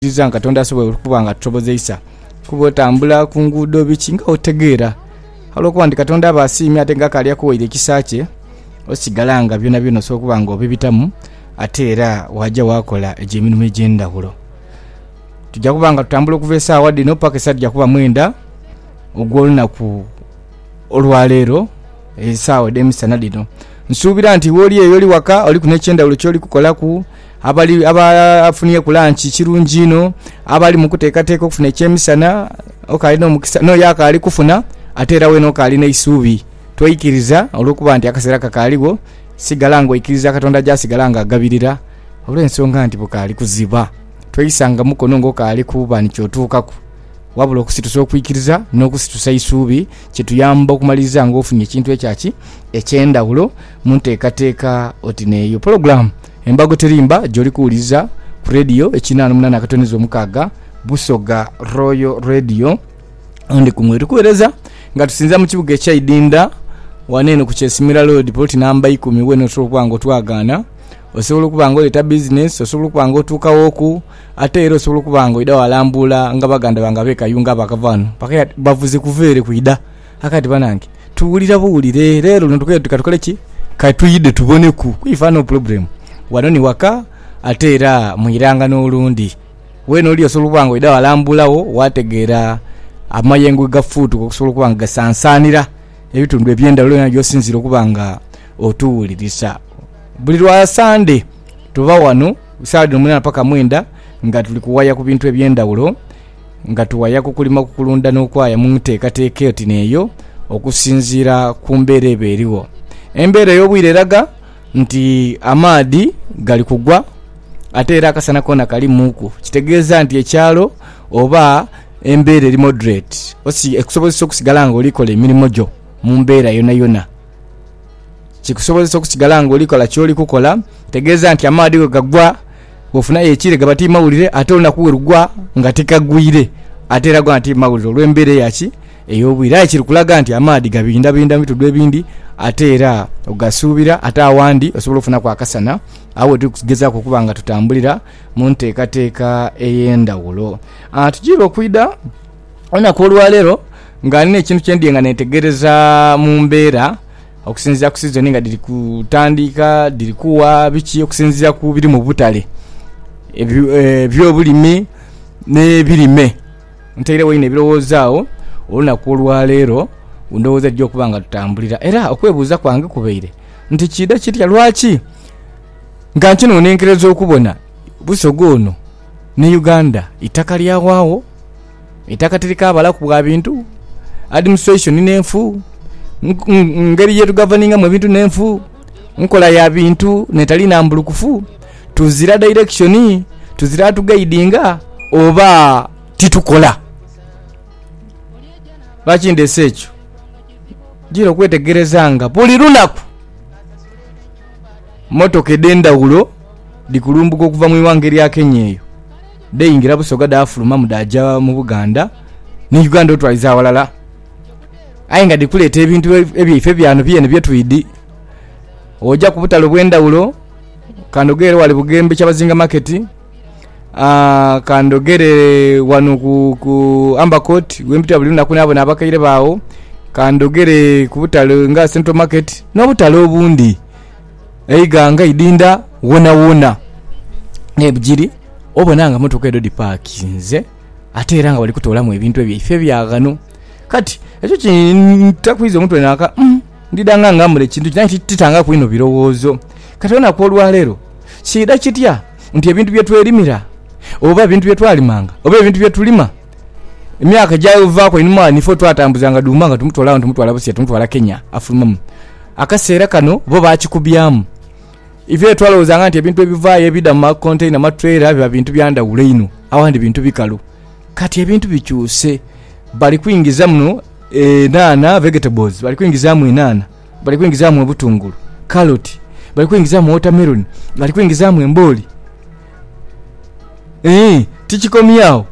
Nziza nga Katonda asobola okuba nga atusobozeisa kuba otambula ku nguudo biki nga otegeera. Olwokuba nti Katonda aba asiimye ate nga akaali akuwaire ekisa kye, osigala nga byonabyona osobola okuba nga obibitamu ate era waaja waakola egyo emirimo egy'endhaghulo. Tuja kuba nga tutambula okuva esaawa dhino paka esaa dhija kuba mwenda ogw'olunaku olwaleero esaawa edh'emisana dhino. Nsuubira nti woli eyo oli waka oliku n'ekyendhaghulo kyoli kukolaku. Abali abafunyeku lanki kirungi inho, abali mu kuteekateeka okufuna eky'emisana, okaali n'omukisa, n'oyo akaali kufuna ate era weena okaali n'eisuubi. Toikiriza olw'okuba nti akaseera kakaaligho, sigala ng'oikiriza Katonda gy'asigala ng'agabirira, olw'ensonga nti bukaali kuziba. Tweisanga mukono ng'okaali kuba ni ky'otuukaku. Wabula okusitusa okwikiriza n'okusitusa eisuubi kituyamba okumaliriza ng'ofunye ekintu ekya ki? Eky'endhawulo mu nteekateeka oti n'eyo. Pologulaamu. Embago Terimba gy'oli kuwuliriza ku leediyo ekinhana munana akatoneza omukaaga Busoga Royal Radio. Andy Kumwe tukuwereza nga tusinza mu kibuga ekya Idinda wano eno ku Kyesimira Road poloti namba ikumi wena osobola okuba nga otwagaana osobola okuba nga oleeta bizinesi osobola okuba nga otuukawooku ate era osobola okuba nga oidha walambuula nga baganda bange abe Kayunga abakava wano bakaire ati bavuze kuva ere kwidha A Kati banange tuwulira buwulire lero luno tukole tuti katukole ki? Ka twidhe tuboneku ku ife ano pulogulemu. Wano ni waka ate era mu iranga n'olundi. Weena oli osobola okuba nga oidha walambulagho waategeera amayengo ghe gafuutuka okusobola okuba nga gasansaanira ebitundu eby'endhaghulo yona gy'osinziire okuba nga otuwulirisa. Buli lwa Sande tuba wano saagha dhino mwinana paka mwenda nga tuli kuwaya ku bintu eby'endhaghulo. nga tuwaya ku kulima ku kulunda n'okwaya mu nteekateeka oti n'eyo okusinziira ku mbeera eba erigho. Embeera ey'obwire eraga nti amaadhi gali kugwa ate era akasana koona kalimuuku, kitegeeza nti ekyalo oba embeera eri moderate ekusobozesa okusigala nga oli kola emirimo gyo mu mbeera yonayona. Kikusobozesa okusigala nga oli kola ky'oli kukola, kitegeeza nti amaadhi bwe gagwa... Bwofuna aye ekire gaba ti mawulire ate olunaku we lugwa nga tikagwire ate era gona ti mawulire olw'embeera eya ki? Ey'obwire. Aye kiri kulaga nti amaadhi gabindhabindha mu bitudhu ebindi ate era ogasuubira ate awandi osobola okufunaku akasana agho we tuli kugezaaku okuba nga tutambulira mu nteekateeka ey'endhawulo. Tujiire okwidha olunaku olwaleero nga nina ekintu kye ndiye nga neetegereza mu mbeera. Okusinziira ku sizoni nga dhiri kutandika, dhiri kugha biki okusinziira ku biri mu butale eby'obulimi n'ebirime. Ntairegho inho ebirowoozo agho olunaku olwaleero ku ndhowooza edhija okuba nga tutambulira era okwebuuza kwange kubaire nti kiidha kitya lwaki nga nkinonenkereza okubona Busoga ono ni Uganda itaka lyawaagho? Eitaka tirikaabalaku bwa bintu, administration n'enfu, ngeri ye tugavaningamu ebintu n'enfu, nkola ya bintu n'etali nambulukufu, tuzira direction, tuzira atugaidinga oba titukola. Lwaki ndheese ekyo? Njira okwetegereza nga buli lunaku mmotoka edh'endhaghulo dhi kulumbuka okuva mu ighanga erya Kenya eyo. Dheingira Busoga dhaafulumamu dhaaja mu Buganda ni Uganda otwaliza aghalala. Aye nga dhiri kuleeta ebintu ebyaife byano byene bye twidhi. Oja ku butale obw'endhaghulo, kandhogere ghale Bugembe Kyabazinga Market, kandhogere ghano ku Amber Court we mpitira buli lunaku naabona abakaire baagho, kandhogere ku butale nga Central Market n'obutale obundi. eighanga idhindha wonawona nebigiri obona nga motoka edho dhipakinze ate era nga bali kutolamu ebintu byaife ebya ghano kati ekyo kintakwiza omutwe naka umm ndidha nga ngamule kintu ki aye titangaku inho bilowozo kati olunaku olwalero kidha kitya nti ebintu byetwerimira oba ebintu byetwalimanga oba ebintu byetulima Emyaka egyavaaku einhuma ghano ife twatambuzanga dhuma nga tumutwala ghano tumutwala Busia tumutwala Kenya afulumamu. Akaseera kano bo baakikubyamu. Ife twalowoozanga nti ebintu ebivaayo ebidha mu makonteyina, maturela biba bintu bya ndhawulo inho, abandhi bintu bikalu. Kati ebintu bikyuse, bali kwingiza muno enhanha, vegetables, bali kwingizaamu enhanha. Bali kwingizaamu obutungulu, kaloti, bali kwingizaamu wotameroni, bali kwingizaamu embooli. Ee, tikikomye agho.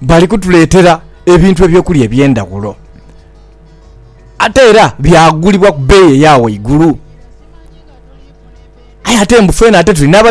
Bali kutuleetera ebintu eby'okulya eby'endaghulo. Ate era byagulibwa ku beeyi eya ghaigulu. Aye ate mbu fwena ate tuli n'aba.